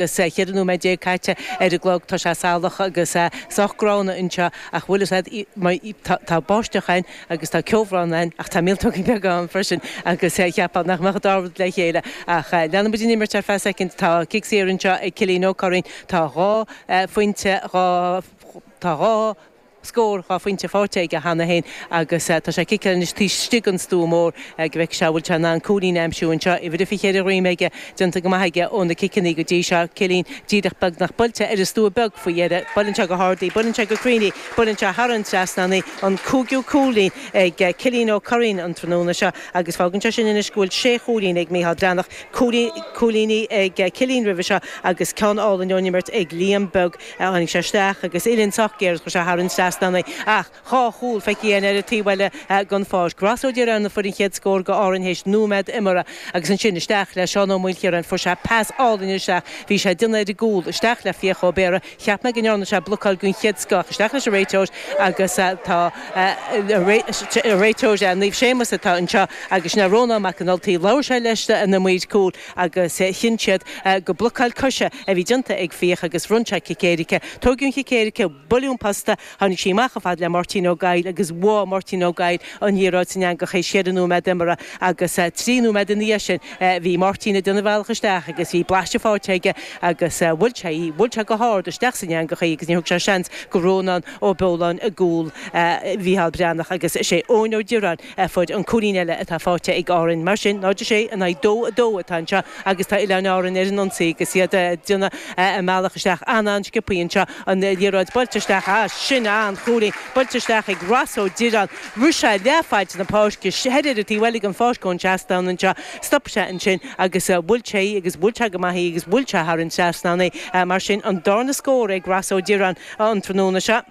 Agus ceithre nóiméad déag caite ar an gclog, tá sé salach agus sách gránna anseo, ach bhfuil fhios a'd, tá báisteach ann agus tá ceobhrán ann, ach tá míoltóga beaga ann freisin, agus cheapfá nach mbeadh an dá rud le chéile. Ach leanann muid an imirt ar feadh soicind, tá cic saor anseo ag Cillín Ó Curraoin, tá dhá phointe, dhá, tá dhá, scór dhá phointe faighte aige cheana féin agus tá sé ag ciceáil anois taobh istigh den stua mór go bhfeice sé an bhfuil sé in ann cúilín a aimsiú anseo. Uimhir a 24 ar a dhroim aige, déanta go maith aige ó na ciceanna go dtí seo. Cillín díreach beagnach buailte ar an stua beag faoi dheireadh. Buaileann sé go hard í, buaileann sé go cruinn í, buaileann sé thar an trasnán í. An cúigiú cúilín ag Cillín Ó Curraoin an tráthnóna seo agus fágann sé sin anois go bhfuil sé chúilín ag Micheál Breathnach, cúig cúilíní ag Cillín roimhe seo agus ceann álainn ón imirt ag Liam Beag. Tháinig sé isteach agus uillinn sách géar is chuir sé thar an trasnán í. Ach dhá chúl feicthe againn ar an taobh eile den pháirc. Ross Ó Direáin a fuair an chéad scór do Árainn théis nóiméad imeartha. Agus ansin isteach le Seán Ó Maoilchiaráin. Fuair sé pas álainn isteach. Bhí sé ag déanamh ar an gcúl. Isteach le Fiach Ó Béarra. Cheap mé go ndearna sé blocáil den chéad scoth. Ach isteach leis an réiteoir agus tá an réiteoir Naomh Séamus atá anseo agus sin é Rónán Mac an Ultaigh. Labhair sé leis na maoir cúil. agus chinn siad gur blocáil coise a bhí déanta ag Fiach agus bhronn sé cic éirice. Tóigeadh an chic éirice buaileadh an posta, tháinig sí amach chomh fada le Máirtín Ó Goill agus bhuail Máirtín Ó Goill an liathróid san eangach sa séú nóiméad imeartha agus trí nóiméad ina dhiaidh sin bhí Máirtín ag déanamh a bhealach isteach agus bhí blaiseadh faighte aige agus bhuail sé í, bhuail sé go hard isteach san eangach í agus níor thug sé seans do Rónán Ó Beoláin i gcúl Mhícheál Breathnach agus is é Eoin Ó Direáin fuair an cúilín eile atá faighte ag Árainn mar sin, 0 6 in aghaidh dó 2, atá anseo agus tá Oileáin Árann ar an ionsaí agus iad ag déanamh a mbealach isteach an-an-sciopthaí anseo. An liathróid buailte isteach, ah, sin an-chúilín! Buailte isteach ag Ross Ó Direáin. Rith sé leath faid na páirce, thoir ar an taobh eile den pháirc ón seastán anseo. Stop sé ansin agus bhuail sé í agus bhuail sé go maith í agus bhuail sé thar an trasnán í. Mar sin, an darna scór ag Ross Ó Direáin an tráthnóna seo.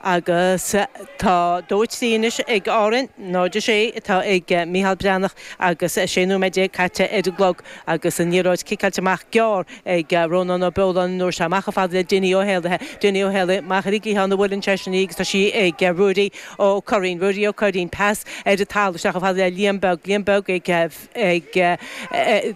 agus tá dó 3 anois ag Árainn, 0 6 atá ag Micheál Breathnach agus 16 nóiméad caite ar an gclog agus an liathróid ciceáilte amach gearr ag Rónán Ó Beoláin an uair seo. Amach chomh fada le Dinny Ó hÉallaithe, Dinny Ó hÉallaithe amach ar an gcliathán a bhuaileann seisean í agus tá sí ag Ruairí Ó Curraoin, Ruairí Ó Curraoin, pas ar an talamh isteach chomh fada le Liam Beag, Liam Beag ag. ag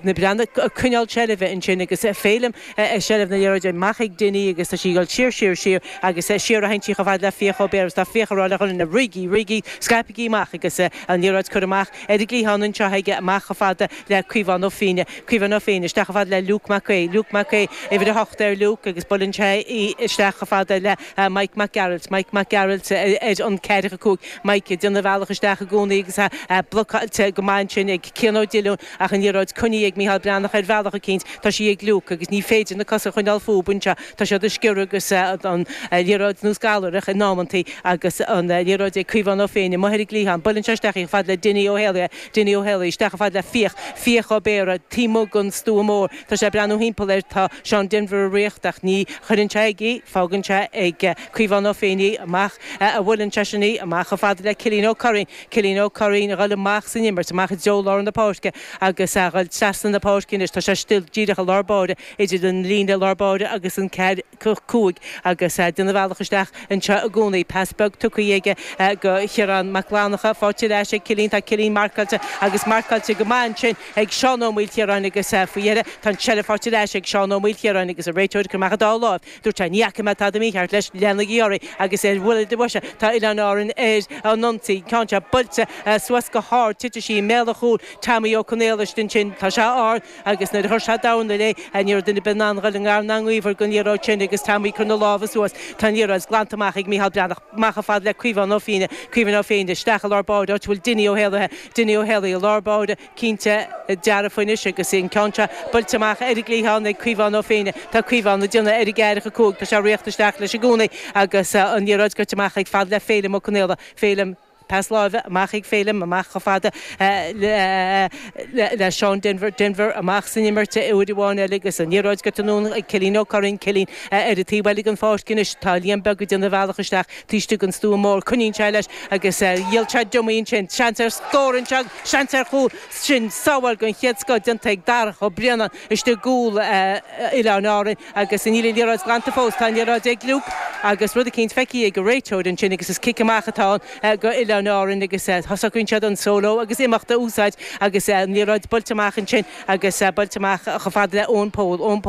na Breathnaigh, ag coinneáil seilbhe ansin agus Féilim i seilbh na liathróide. Mac ag Dinny agus tá sí ag dul siar, siar, siar agus siar a théann sí chomh fada le Fiach Ó Béarra agus tá Fiach ag rá le Ghunna, Rithigí, rithigí, scaipigí amach agus an liathróid curtha amach ar an gcliathán anseo aige, amach chomh fada le Caomhán Ó Féinne, Caomhán Ó Féinne, isteach chomh fada le Luke Mac Aoidh, Luke Mac Aoidh, uimhir a hocht ar Luke agus buaileann sé í isteach chomh fada le. a, Mike Mac Gearailt, Mike Mac Gearailt, ar an 45 Mike ag déanamh a bhealach isteach i gcónaí agus a a blocáilte go maith ansin ag Cian Ó Diollúin ach an liathróid coinnithe ag Micheál Breathnach ar bhealach eicínt tá sí ag Luke agus ní féidir na cosa a choinneáil fúib anseo tá siad ag sciorradh agus an liathróid nós gallaoireach in amantaí agus an liathróid ag Caomhán Ó Féinne amuigh ar an gcliathán buileann sé isteach í chomh fada le Dinny Ó hÉalaithe Dinny Ó hÉalaithe isteach chomh fada le Fiach Fiach Ó Béarra taobh amuigh den stua mór Tá sé ag breathnú thimpeall air, tá Seán Denvir ag ritheacht ach ní chuireann sé aige é, fágann sé ag Caomhán Ó Féinne é, amach a bhuaileann seisean é amach chomh fada le Cillín Ó Curraoin, Cillín Ó Curraoin a ghoil amach san imirt, amach i dtreo lár na páirce agus a ghoil trasna na páirce anois, tá sé still díreach i lár báire, idir an líne lár báire agus an ceathracha a cúig agus ag déanamh a bhealach isteach anseo i gcónaí. Pas beag tugtha aige go Ciarán Mac Fhlannacha, faighte ar ais ag Cillín, tá Cillín marcáilte agus marcáilte go maith ansin, ag Seán Ó Maoilchiaráin agus faoi dheireadh, tá an tseilbh faighte ar ais ag Seán Ó Maoilchiaráin agus an réiteoir ag cur amach an dá láimh. Dúirt sé, 'Ní fhaca mé tada mícheart leis, leanaigí oraibh agus ar bhuille do bhoise tá Oileáin Árann ar an ionsaí, ceann seo buailte suas go hard, titfidh sí i mbéal an chúil Teaimí Ó Conaola istigh ansin tá sé ard agus nuair a chuir sé dorna léi ní raibh duine ar bith in ann dul i ngar ná i ngaobhar den liathróid sin agus Teaimí ag cur na lámha suas, tá an liathróid glanta amach ag Micheál Breathnach, amach chomh fada le Caomhán Ó Féinne, Caomhán Ó Féinne, isteach i lár báire, áit a bhfuil Dinny Ó hÉalaithe, Dinny Ó hÉalaithe i lár báire, cinnte dearfa anois agus an ceann seo buailte amach ar an gcliathán ag Caomhán Ó Féinne. Tá Caomhán ag déanamh ar an gceathracha a cúig, tá sé ag ritheacht isteach leis i gcónaí agus an liathróid goite amach chomh fada le Féilim Ó Conaola. Féilim, pas láimhe amach ag Féilim, amach chomh fada le Seán Denvir. Denvir, amach san imirt uair amháin eile agus an liathróid goite anonn ag Cillín Ó Curraoin. Cillín, ar an taobh eile den pháirc anois, tá Liam Beag ag déanamh a bhealach isteach. Taobh istigh den stua mór, coinníonn sé leis agus dhíol sé dummy ansin, seans ar scór ansin, seans ar chúl, sin sábháil den chéad scoth déanta ag Darach Ó Braonáin istigh i gcúl Oileáin Árann, agus níl an liathróid glanta fós, tá an liathróid ag Luke agus rud eicínt feicthe ag an réiteoir ansin agus is cic amach atá ann go Oileáin Árann agus socraíonn siad an solo agus imeacht a úsáid agus an liathróid buailte amach ansin agus buailte amach chomh fada le Eoin Póil, Eoin Póil.